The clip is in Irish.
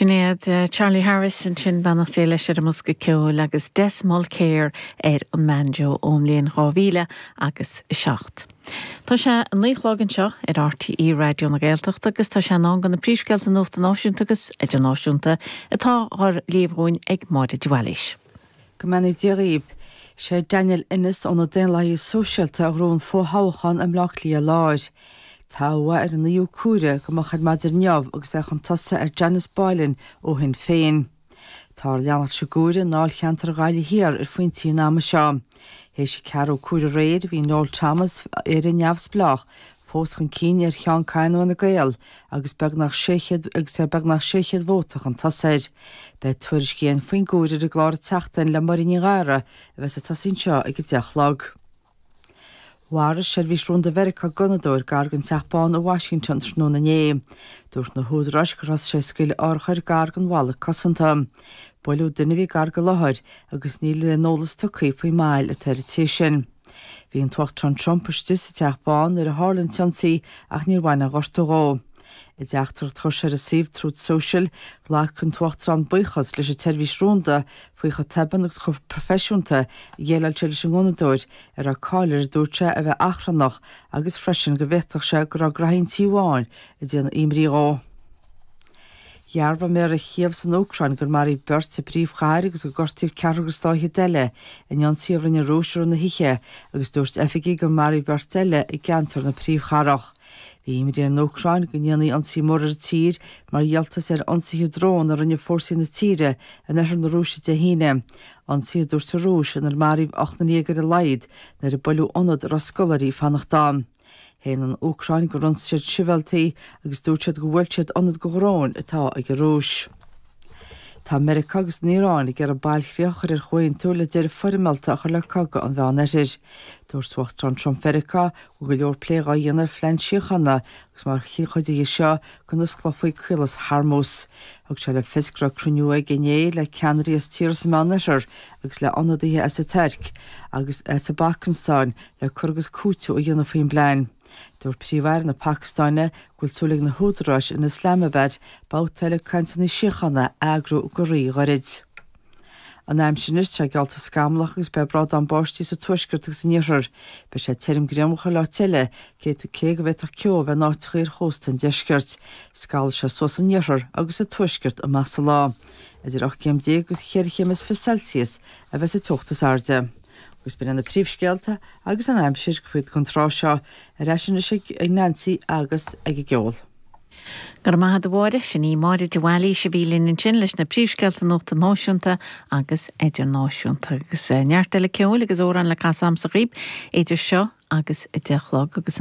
Sin iad Charlie Harris ansin, beannacht Dé leis ar an mbosca ceoil agus Des Mulkere ar an mbanjo ón mbliain dhá mhíle agus a seacht. Tá sé a naoi a chlog anseo ar RTÉ Raidió na Gaeltachta agus tá sé in am do na príomhscéalta nuachta náisiúnta agus idirnáisiúnta atá á léamh dhúinn ag Máire de Bhailís. Go mbeannaí Dia dhaoibh. Is é Daniel Ennis ó na Daonlathaithe Sóisialta a ghnóthaigh an fothoghchán i mBleá Cliath Láir. Toghadh é ar an 9ú comhaireamh go moch ar maidin inniu agus é chun tosaigh ar Janice Boylan ó Shinn Féin. Táthar ag leanacht sa gcomhaireamh i ndáilcheantar Ghaillimh Thiar ar phointí an ama seo. Théis an ceathrú comhaireamh aréir, bhí Noel Thomas, Éire Neamhspleách, fós chun cinn ar Sheán Kyne ó Fhine Gael agus beagnach sé agus é beagnach 600 vóta chun tosaigh air. Beidh tuairiscí againn faoin gcomhaireamh ar an gclár An tSeachtain le Máirín Ní Ghadhra a bheas ag tosaí anseo ag a deich a chlog. Mharaigh Seirbhís Rúnda Mheiriceá gunnadóir gar den Teach Bán i Washington tráthnóna inné. Dúirt na húdaráis gur thosaigh sé ag scaoileadh urchar gar den bhalla cosanta. Buaileadh duine a bhí gar den láthair agus níl aon eolas tugtha faoin mbail atá ar an té sin. Bhí an tUachtarán Trump istigh sa Teach Bán nuair a tharla an t-ionsaí ach níor bhain aon ghortú dhó. I dteachtaireacht a chuir sé ar an suíomh Truth Social, ghlac an tUachtarán buíochas leis an tseirbhís rúnda faoi chomh tobann agus chomh proifisiúnta a dhéileáil sé leis an ngunnadóir, a raibh cáil air a dúirt sé a bheith achrannach, agus freisin go bhféadfadh sé go raibh graithí an Tí Bháin ag déanamh imní dhó. Dhearbhaigh méara Chív san Úcráin gur maraíodh beirt sa phríomhchathair agus gur gortaíodh ceathrar agus dá fhichead eile in ionsaí a rinne an Rúis i rith na hoíche agus dúirt oifigigh gur maraíodh beirt eile i gceantar na príomhchathrach. Bhí imní ar an Úcráin go ndéanfaí ionsaí mór ar an tír mar dhíoltas ar ionsaithe drón a rinne fórsaí na tíre in oirthear na Rúise Dé hAoine, ionsaí a dúirt an Rúis inar maraíodh ocht nduine déag ar a laghad nuair a buaileadh ionad a raibh scoláirí ag fanacht ann. Shéan an Úcráin gur ionsaigh siad sibhialtaigh agus dúirt siad gur bhuail siad ionad do dhróin atá ag an Rúis. Tá Meiriceá agus an Iaráin ag iarraidh bailchríoch a chur ar chomhaontú le deireadh foirmeálta a chur le cogadh an Mheánoirthir. Dúirt Uachtarán Trump Mheiriceá go bhfuil go leor plé dhá dhéanamh ar phlean síochána agus mar chuid de seo go n-osclófaí Caolas Hormuz. Thug sé le fios go raibh cruinniú aige inné le ceannairí as tíortha sa Meánoirthear agus le ionadaithe as an Tuirc agus as an bPacastáin le cur agus cúiteamh a dhéanamh faoin bplean. Dúirt Príomh-Aire na Pacastáine go bhfuil súil ag na húdaráis in Islamabad babhta eile cainteanna síochána a eagrú go rí-ghairid. An aimsir anois, tá sé geallta scamallach agus beidh brádán báistí sa tuaisceart agus san iarthar. Beidh sé tirim grianmhar chuile áit eile, cé cé go bhféadfadh ceo a bheith in áiteacha ar chósta an deiscirt. Scalfaidh sé suas san iarthar agus sa tuaisceart amach sa lá. Idir ocht gcéim déag agus cheithre chéim is fiche Celsius a bheas an teocht is airde. Agus b'in iad na príomhscéalta agus an aimsir go fóill don tráth seo ar ais anois ag Nancy agus ag a gceol. Go raibh maith agat a Mháire, sin í Máire de Bhailís a bhí linn ansin leis na príomhscéalta nuachta náisiúnta agus idirnáisiúnta. Agus neart eile ceoil agus amhráin le casadh agamsa dhaoibh idir seo agus a deich a chlog agus an.